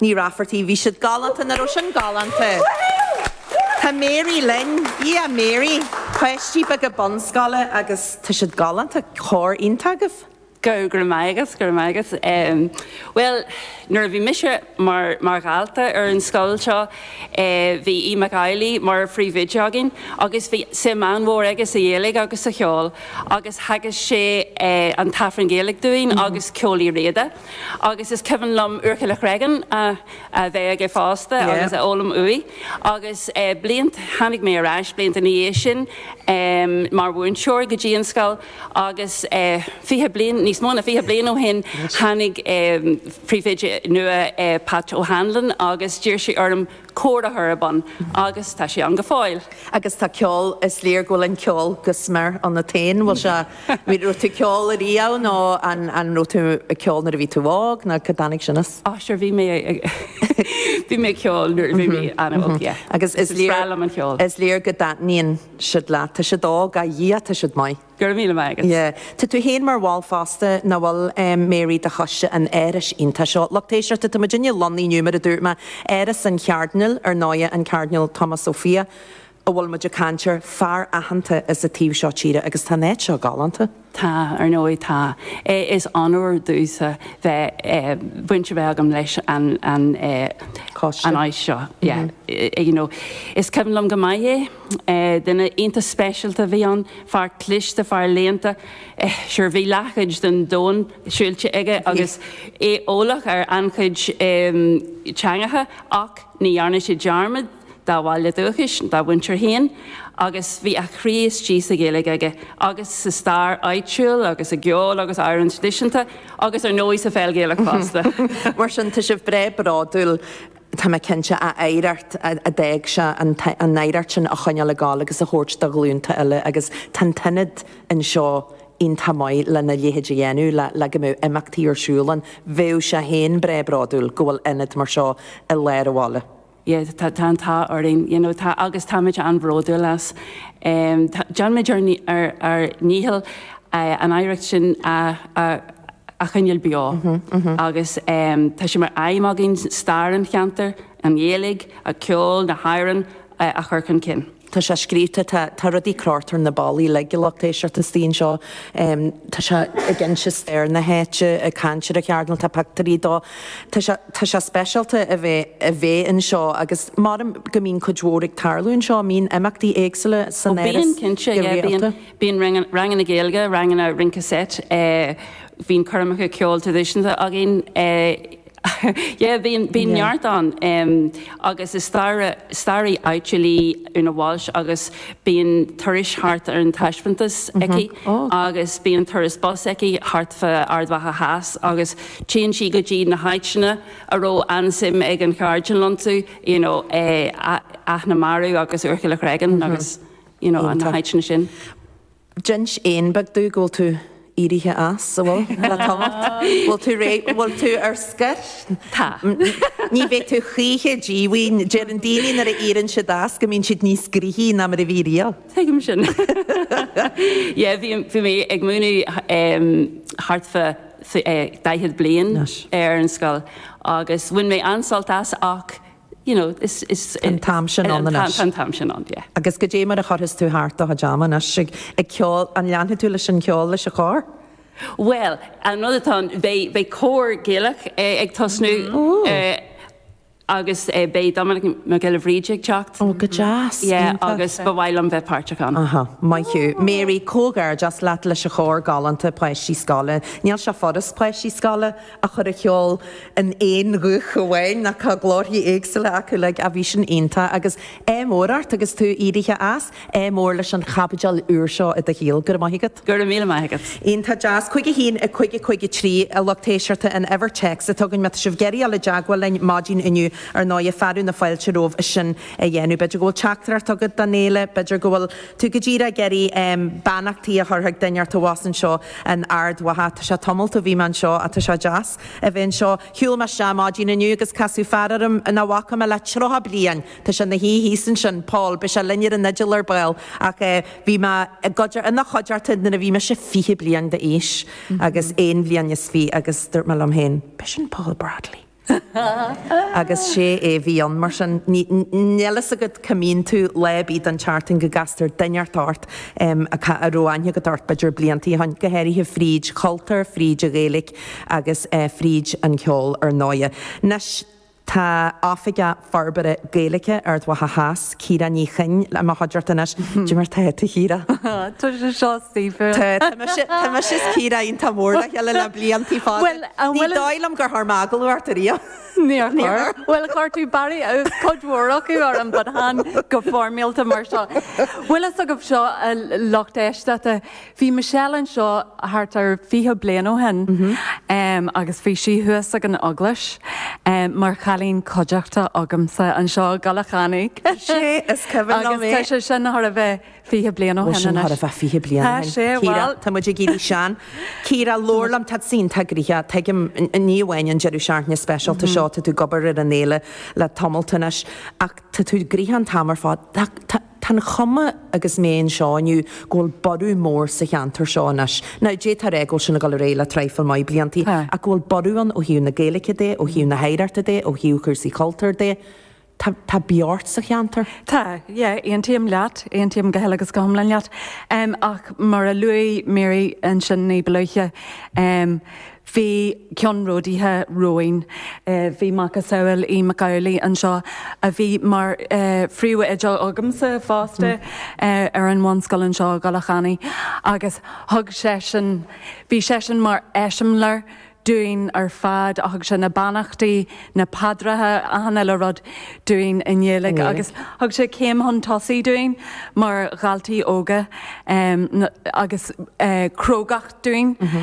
Ní Raifeartaigh., Bhí siad galánta, nach raibh sin galánta? Tá Mary linn. Yeah, Mary. Páistí beaga bunscoile agus tá siad galánta. Cór iontach agaibh. Go raibh maith agat, go raibh maith agat. Em, bhuel, nuair a bhí mise mar, mar dhalta ar an scoil seo, eh, bhí Aodh Mac Amhlaí mar phríomhoide againn agus bhí suim an-mhór aige sa Ghaeilge agus sa cheol agus theagasc sé, eh, an tAifreann Gaeilge dúinn agus ceol Uí Riada. agus is cuimhin liom Úrchill an Chreagáin a bheith aige fosta agus é a fhoghlaim uaidh agus blianta, tháinig mé ar ais blianta ina dhiaidh sin mar mhúinteoir go dtí an scoil agus fiche bliain, níos mó ná fiche bliain ó shin, tháinig príomhoide nua, Pat O'Hanlon, agus d'iarr sé orm cór a chur ar bun, agus tá sé ann go fóill. Agus tá ceol, is léir go bhfuil an ceol go smior ionat féin, bhfuil sé, raibh tú ag ceol ariamh nó an raibh tú ag ceol nuair a bhí tú óg nó cá dtáinig sin as? Á sure, bhí mé ag, bhí mé ag ceol nuair a bhí mé an-óg, yeah. Agus is léir, is breá liom an ceol. Is léir go dtaitníonn siad leat, tá siad óg, ah yeah, tá siad maith. Go raibh míle maith agat. Tá tú féin mar bhall fosta, nach bhfuil, Mary, de choiste an árais iontaigh seo. Lucht éisteachta, tá muid lonnaithe inniu, mar a dúirt mé, Áras an Chairdinéil, ar ndóighe, an Cairdinéal Tomás Ó Fiaich, a bhfuil muid ag caint air, fear aitheanta as an taobh seo tíre. Agus tá an áit seo galánta. Tá, ar ndóigh, tá. Is onóir domhsa bheith, baint a bheith agam leis an, an, an áis seo. Yeah. You know, is cuimhin liom go maith é. Duine iontach speisialta a bhí ann, fear cliste, fear léannta. Sure, bhí leathchuid den domhan siúilte aige agus é eolach ar an-chuid teangacha ach ní dhearna sé dearmad dá bhaile dúchais, dá mhuintir féin agus bhí a chroí istigh sa Ghaeilge aige agus sa stair áitiúil agus i gceol agus amhráin thraidisiúnta agus ar ndóigh sa pheil Ghaelach fosta. Mar sin, tá sibh breá bródúil. Tá mé cinnte, a oidhreacht, a d'fhág sé, an oidhreacht sin a choinneáil ag gabháil agus a thabhairt do ghlúnta eile agus tá an t-ionad anseo iontach maith lena leithéid a dhéanamh, le go mbeadh imeachtaí ar siúl ann. Bheadh sé féin breá bródúil go bhfuil ionad mar seo i lár a' bhaile. Yeah, tá an t-ádh orainn, you know, tá, agus táimid an-bhródúil as. Déanaimid ár ndícheall. an oidhreacht sin a choinneáil beo agus tá sé mar aidhm againn stair an cheantair, an Ghaeilge, an ceol, na hamhráin a chur chun cinn. Tá sé scríofa, tá rudaí crochta ar na ballaí, a lucht éisteachta, istigh anseo, tá sé ag inse stair na háite, ag caint ar an Chairdinéal, tá pictiúirí de. Tá sé speisialta a bheith anseo agus mheasfainn go mbíonn cuid mhór ag tarlú anseo, bíonn imeachtaí éagsúla san áras, go rialta. Bíonn ranganna Gaeilge, ranganna rince seit, bíonn coirmeacha ceoil traidisiúnta againn, yeah, bíonn, bíonn neart ann. Agus is staraí, staraí áitiúil í Úna Walsh agus bíonn turas thart ar an taispeántas aici agus bíonn turas bus aici thart fá Ard Mhacha Theas agus téann sí go dtí na háiteanna a raibh an-suim ag an Chairdinéal iontu, you know, Eamhain Mhacha agus Úirchill an Chreagáin agus. you know, na háiteanna sin. D'inis éan beag domh go bhfuil tú éirithe as, an bhfuil? Le tamalt. Bhfuil tú réidh, bhfuil tú ar scoir? Tá. Ní bheidh tú choíche díomhaoin. Deireann daoine nuair a éireann siad as go mbíonn siad níos gnoithí ná mar a bhí riamh. Tuigim sin. Yeah, bhí, bhí mé ag múineadh um thart fá eh daichead bliain ar an scoil agus bhain mé an-sult as ach you know, is, is, Tá an t-am sin ann anois. Tá an t-am sin ann, yeah. Agus goidé mar a chuirfeas tú thart do chuid ama anois ag, ag ceol, an leanfaidh tú leis an cheol leis an chór? Bhuel, an rud atá ann, beidh, beidh cór Gaelach ag tosnú eh agus eh beidh Dominic Mac Giolla Bhríde ag teacht. Ó, go deas, Yeah, iontach. agus ba mhaith liom bheith páirteach ann. Aha, maith thú. Mary, comhghairdeas leat leis an chór galánta, páistí scoile. Níl sé furast páistí scoile a chur a cheol in aon ghuth amháin, mar tá glórthaí éagsúla acu, like, a bhí sin iontach agus ádh mór ort agus tú éirithe as, ádh mór leis an chaibidil úr seo i do shaol, go raibh maith agat. Go raibh míle maith agat. Iontach deas. Cúig a haon, a cúig, a cúig a trí, a lucht éisteachta, an uimhir text atá againn, má tá sibh ag iarraidh dul i dteagmháil linn maidin inniu, ar ndóigh, fearadh na fáilte romhaibh sin a dhéanamh. B'fhéidir go bhfuil teachtaireacht agat don fhéile, b'fhéidir go bhfuil. Tú, go bhfuil tú ag iarraidh beannachtaí a chur chuig duine ar bith abhus anseo in Ard Mhacha. Tá sé tamall ó bhí mé anseo, tá sé deas a bheith anseo. Shiúil mé isteach maidin inniu agus casadh fear orm nach bhfaca mé le tríocha bliain. Tá sé ina shuí thíos ansin, Paul, beidh sé linn ar an fhidil ar ball, ach bhí mé ina chuideachta nuair a bhí mise fiche bliain d'aois, agus aon bhliain is fiche, agus dúirt mé liom féin, B'shin Paul Bradley. Agus is é a bhí ann, mar sin. Níl a fhios agat cá mbíonn tú lá ar bith den tseachtain go gcastar duine ort, ort a raibh aithne agat air, b'fhéidir, blianta ó shin, go háirithe fríd chultúr, fríd an Ghaeilge agus fríd an cheol, ar ndóigh. Anois tá Oifig a. Forbartha Gaeilge Ard Mhacha Theas, Ciara Ní Chuinn i mo chuideachta anois. Caidé mar tá tú a Chiara. Tá sé seo aisteach. Tá. Tá mise is Ciara iontach mór le chéile le bliantaí fada. Ní dóigh liom gur chuir mé agallamh ort ariamh. Níor chuir. Bhuel, chuir tú barraí cuid mhór acu orm but chan go foirmeálta mar seo. An bhfuil a fhios agaibh seo a lucht éisteachta. Bhí Michelle anseo thart ar 20 bliain ó shin agus bhí sí thuas ag an Eaglais mar chailín coimhdeachta agamsa anseo i gCoilleach Eanaigh. Sea, is cuimhin liom é. Agus tá sé sin thart ar bheith 20 bliain ó shin anois. Tá sé thart ar bheith 20 bliain ó shin. Tá sé, bhuel. Tá muid ag éirí sean. Ciara, labhair liom, tá tusa iontach gnoitheach, tuigim, ní amháin an deireadh seachtaine speisialta seo, tá tú ag obair ar an fhéile le tamalt anois, ach tá tú gnoitheach an t-am ar fad. Tá an chuma, agus mé anseo inniu, go bhfuil borradh mór sa cheantar seo anois. Now, d'fhéadfá a rá go bhfuil sin ag dul ar aghaidh le traidhfil maith bliantaí, ach go bhfuil borradh ann ó thaobh na Gaeilge de, ó thaobh na hoidhreachta de, ó thaobh chúrsaí cultúir de. Tá, tá beocht sa cheantar. Tá, yeah, aontaím leat, aontaím go huile agus go hiomlán leat. Ach mar a luaigh Mary ansin ní ba luaithe, Bhí ceannródaithe romhainn. Bhí macasamhail Hughie Macauley anseo, a bhí mar phríomhoide agamsa fosta ar an bhunscoil anseo i gCoilleach Eanaigh, agus thug seisean, bhí seisean mar eiseamláir dúinn ar fad. Thug sé na beannachtaí, na paidreacha, achan uile rud dúinn i nGaeilge agus thug sé céim chun tosaigh dúinn mar dhaltaí óga agus crógacht dúinn.